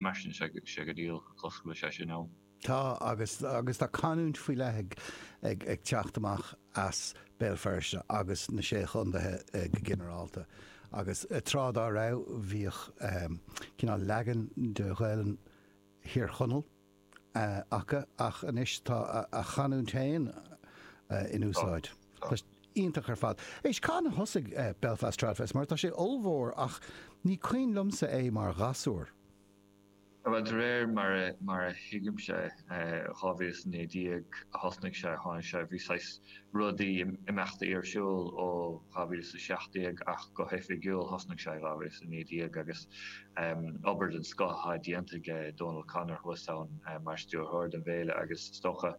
Mar sin, sé go díreach ag an ollscoil sin ann. Tá, agus agus tá canúint faoi leith ag ag ag teacht amach as Béal Feirste agus na Sé Chontaethe go ginearálta. Agus tráth dá raibh, bhíodh ehm cineál leagan de Ghaelainn Thír Chonaill eh acu ach anois tá a gcanúint féin eh in úsáid. Tá. Tá sé iontach ar fad. Éist, cathain a thosaigh Belfast Tradfest? Mar tá sé ollmhór ach ní cuimhin liomsa é mar ghasúr. Bhuel, de réir mar a thuigimse, 2019 a thosnaigh sé, tháinig sé, bhí saghas rudaí, imeachta ar siúl ó 2017 ach go hoifigiúil thosnaigh sé 2019 agus obair den scoth atá déanta aige, Dónal O'Connor thuas ann mar stiúrthóir don bhféile agus is dócha,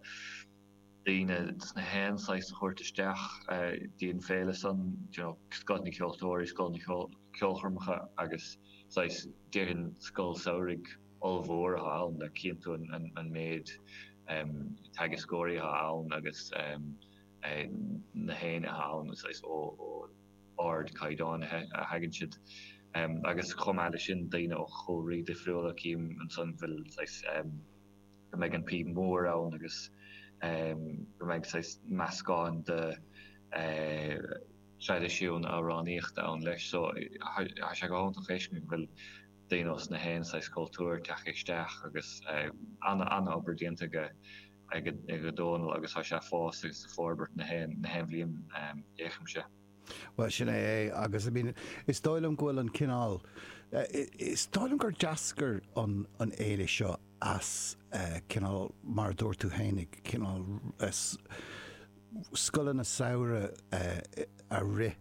daoine ós na haon saghas a thabhairt isteach dtí an féile san, you know, Scoth na gCeoltóirí, Scoth na gCeolchoirmeacha agus saghas, déarfainn Scoil Samhraidh ollmhór atá ann le cinntiú an méid em teagascóirí atá ann agus em na héinne atá ann saghas ó ó ardchaighdeán a thagann siad em agus chomh maith leis sin daoine ó chúlraí difriúla cím ansan go bhfuil saghas em go mbeidh an phíb mhór ann agus go mbeidh saghas meascán de thraidisiún amhránaíochta ann leis so tá sé go hiontach a fheiscint go bhfuil daoine ó na haon saghas cultúr ag teacht isteach agus an-obair déanta aige Dónal agus tá sé ag fás agus ag forbairt na haon bhliain feicimse. Bhuel, sin é é agus, I mean, is dóigh liom go bhfuil an cineál, is dóigh liom gur d'eascair an fhéile seo as cineál, mar a dúirt tú féin, cineál scoileanna samhraidh a rith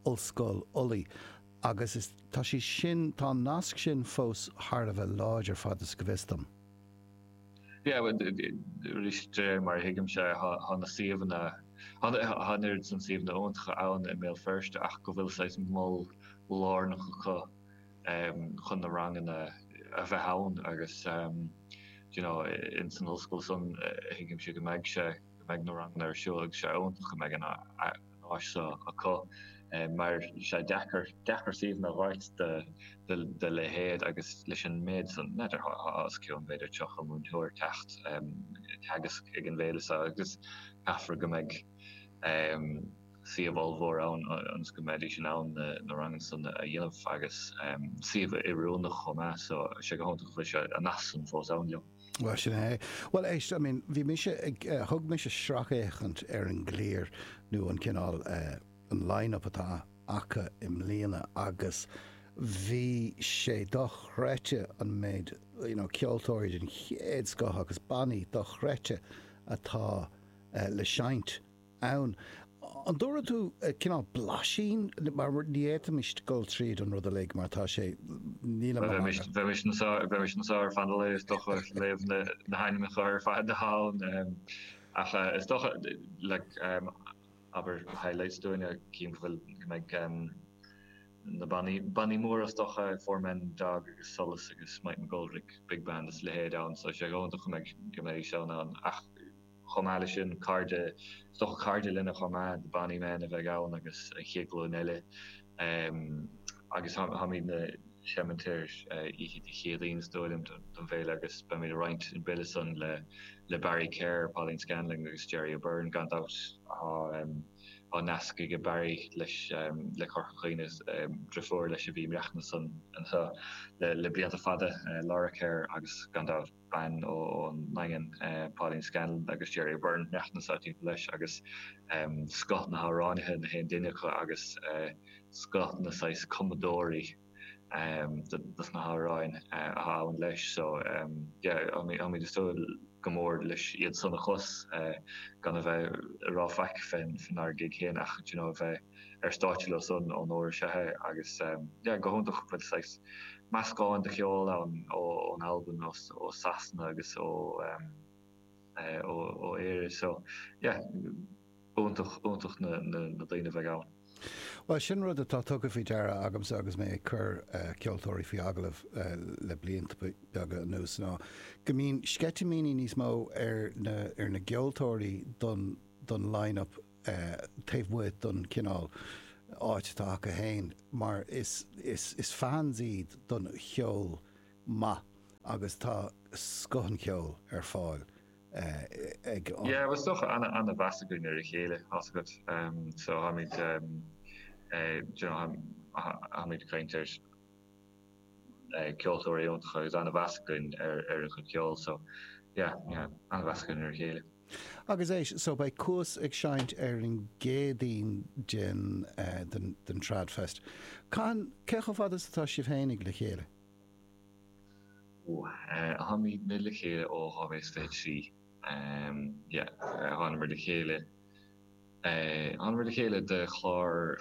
Ollscoil Ulaidh agus is, tá sé sin, tá an nasc sin fós thar a bheith láidir fad is go bhfios dom. Yeah, arís de réir mar a thuigimse, tá na suíomhanna, tá an oiread san suíomhanna iontacha ann i mBéal Feirste ach go bhfuil saghas mol lárnach acu chun na ranganna a bheith ann agus you know, insan ollscoil san thuigimse go mbeidh sé, go mbeidh na ranganna ar siúl agus tá sé iontach go mbeidh an áis seo acu mar tá sé deacair suíomhanna a dh'fháilt dá leithéid agus leis an méid san idir os cionn b'fhéidir seachtó múinteoir ag teacht ag teagasc ag an bhféile seo agus caithfear go mbeidh suíomh ollmhór ann ionas go mbeidís in ann na ranganna san a dhéanamh agus suíomh oiriúnach chomh maith so tá sé go hiontach go bhfuil saghas an nasc san fós ann leo. Bhuel, sin é. Bhuel, éist, I mean, bhí mise ag, eh, thug mise sracfhéachaint ar an gclár nó an cineál, eh, an line-up atá acu i mbliana agus bhí sé dochreidte an méid, you know, ceoltóirí den chéad scoth agus bannaí dochreidte atá, eh, le seinnt. ann. An dtabharfaidh tú cineál blaisín mar ní fhéadfaimis dul tríd an rud uilig mar tá sé. Níl an. Bheimis anseo ar feadh an lae is dócha ag léamh na hainmneacha ar fad ann ach is dócha like abair highlights dúinne chím go bhfuil go mbeidh na bannaí bannaí móra is dócha Four Men and a Dog agus Solas agus Mike McGoldrick big band is a leithéid ann so sé dhomhan do chonaic go mbeidís ann ann ach Chomh maith leis sin, cairde, is dócha cairde linne chomh maith, na Bonny Men a bheidh ann agus an chéad ghlúin eile agus táimidne ag seimint ar oíche Dé Céadaoin is dóigh liom don bhféile agus beimid ag roinnt an bille san le le Barry Kerr, Pauline Scanlon agus Gerry O'Beirne gan dabht. Tá nasc aige Barry leis le Corca Dhuibhne, driofúr leis a bhí ag maireachtaint anseo le blianta fada, Laura Kerr agus gan dabht. bean ón nDaingean, Pauline Scanlon agus Gerry O'Beirne, ag maireachtaint timpeall leis agus scoth na hamhránaithe, na haon duine acu agus scoth na saghas cumadóirí dos na hamhráin atá ann leis. So yeah táimid ag súil go mór leis iad san a chlos gan a bheith ag rá faic fén ár gig féin ach you know a bheith ar stáitse leo san onóir is ea é agus yeah go hiontach bhfuil saghas meascán de cheol ann ó ón Albain ós ó Sasana agus ó em eh ó ó Éire so yeah iontach iontach na na na daoine a bheidh ann. Bhuel sin rud atá tugtha faoi deara agamsa agus mé ag cur eh ceoltóirí faoi agallamh eh le blianta beaga anuas ná go mbíonn sceitimíní níos mó ar na ar na gceoltóirí don don line up taobh amuigh den chineál áit atá acu féin mar is fans iad den cheol maith agus tá scoth an cheoil ar fáil ag an. Yeah, bhuel is dócha ana-mheas againn ar a chéile tá a fhios agat so táimid, you know, táimid ag caint ar. ceoltóirí iontach agus ana-mheas againn ar a chuid ceoil so yeah ana-mheas againn ar a chéile. Agus éist so beidh Cuas ag seinnt ar an gCéadaoin den den Tradfest. Cathain cé chomh fada is atá sibh féinig le chéile? Ó táimid le chéile ó 2023 yeah thánamar le chéile thánamar le chéile do chlár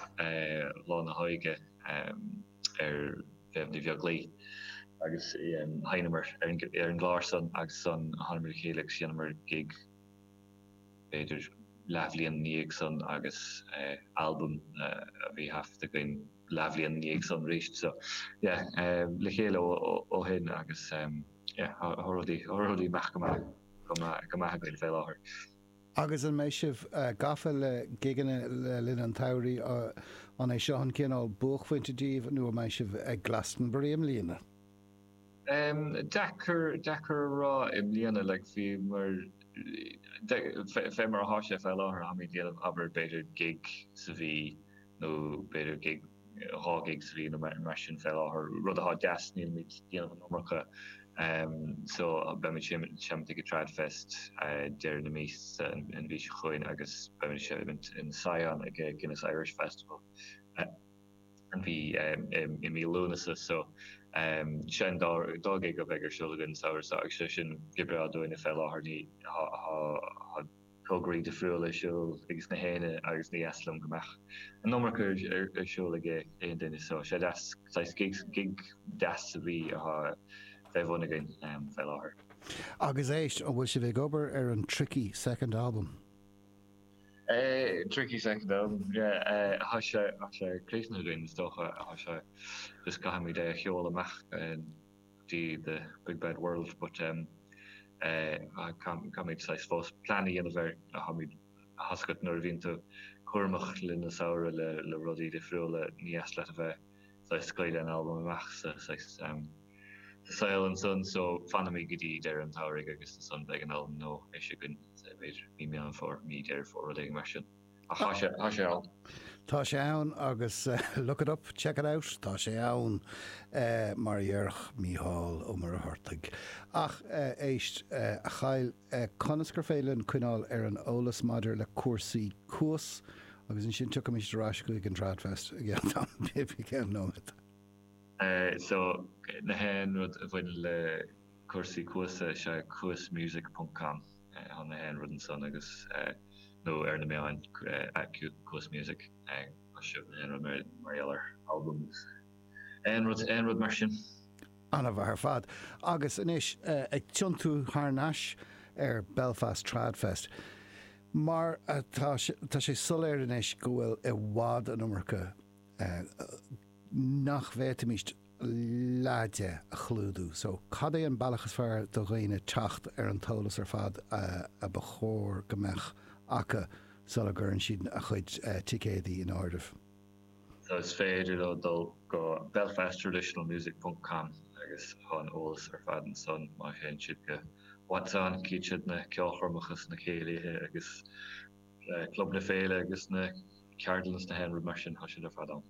Lá na hÓige ar Mhéabh Ní Bheaglaoich agus sheinneamar ar an gclár san agus san thánamar le chéile agus dheineamar gig b'fhéidir leathbhliain ina dhiaidh san agus albam a bhí taifeadta againn leathbhliain ina dhiaidh san arís so yeah le chéile ó shin agus yeah tá rudaí ag imeacht go maith againn fé láthair. Agus an mbeidh sibh gafa le gigeanna le linn an tsamhraidh? An é seo an cineál buaicphointe daoibh nó an mbeidh sibh ag Glastonbury i mbliana? Deacair, deacair a rá i mbliana, like, fé mar, fé mar atá sé fé láthair, táimid ag déanamh, abair, b'fhéidir gig sa mhí, nó b'fhéidir gig, dhá ghig sa mhí nó mar sin fé láthair, rud atá deas, nílimid ag déanamh an iomarca so beimid seimint ag an Trad Fest deireadh na míosa an mhí seo chugainn agus beimid seimint in Sion ag Guinness Irish Festival an mhí i mí Lúnasa so sin dhá ghig a bheidh ar siúl againn an samhradh so agus sé sin go breá dúinne fé láthair ní tograí difriúla ar siúl ages na héinne agus ní dheas liom go mbeadh an iomarca ar siúl ag aon duine so sé deas saghas gig gig deas a bhí athá fé bhun againn fé láthair. Agus éist, an bhfuil sibh ag obair ar an Tricky Second Album? Eh Tricky Second Album yeah eh athá sé athá sé críochnaithe againn is dócha athá sé just caithfimid é a sheoladh amach eh go dtí the big bad world but em caithfimid I suppose plean a dhéanamh ar a tháimid tá a fhios agat nuair a bhíonn tú cúramach le linn an tsamhraidh le le rudaí difriúla ní dheas leat a bheith saghas scaoileadh an albam amach sa saghas em sa saol ansan so fanfaimid go dtí deireadh an tsamhraidh agus ansan beidh an albam nua eisithe againn b'fhéidir mí Meán Fómhair mí Deireadh Fómhair rud éigin mar sin. Tá sé, tá sé ann. Tá sé ann agus look it up, check it out, tá sé ann, mar a dhéarfadh Mícheál Ó Muircheartaigh. Ach éist, a Kyle, conas gur féidir linn coinneáil ar an eolas maidir le cúrsaí Cuas agus ansin tiocfaimid ar ais chuig an Tradfest i gceann nóiméad. So, na haon rud a bhaineann le cúrsaí Cuas, is é cuasmusic.com. tá na haon rud ansan agus nó ar na meáin Cuas Music tá sibh na haon rud mar gheall ar albam agus aon rud aon rud mar sin. Ana mhaith ar fad. Agus anois ag tiontú thar n-ais ar Belfast Trad Fest mar tá sé soiléir anois go bhfuil i bhfad an iomarca nach bhféadfaimís leide a chlúdú. So, cad é an bealach is fearr do dhaoine teacht ar an t-eolas ar fad a ba chóir go mbeadh acu sula gcuireann siad a gcuid ticéadaí in áirithe? So, is féidir leo dul go belfasttraditionalmusic.com agus tá an eolas ar fad ansan. Má théann siad go What's On cífid siad na ceolchoirmeacha is na céilithe agus Club na Féile agus na ceardlanna is gach aon rud mar sin, tá siad ar fad ann.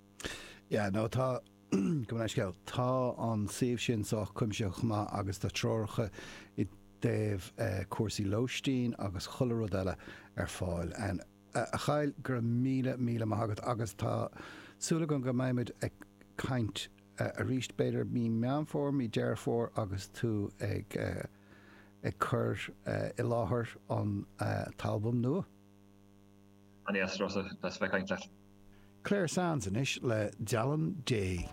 Yeah, no, tá. Gabh mo leithscéal, tá an suíomh sin sách cuimsitheach agus tá treoracha i dtaobh cúrsaí lóistín agus chuile rud eile ar fáil ann. A Chlare, go raibh míle, míle maith agat agus tá súil agam go mbeimid ag caint arís b'fhéidir mí Meán Fómhair, mí Dheireadh Fómhair agus tú ag cur i láthair an t-albam nua. An é as Ros a' Bhreis a bheith ag caint leat? Clare Sands anois le Dealán Dé.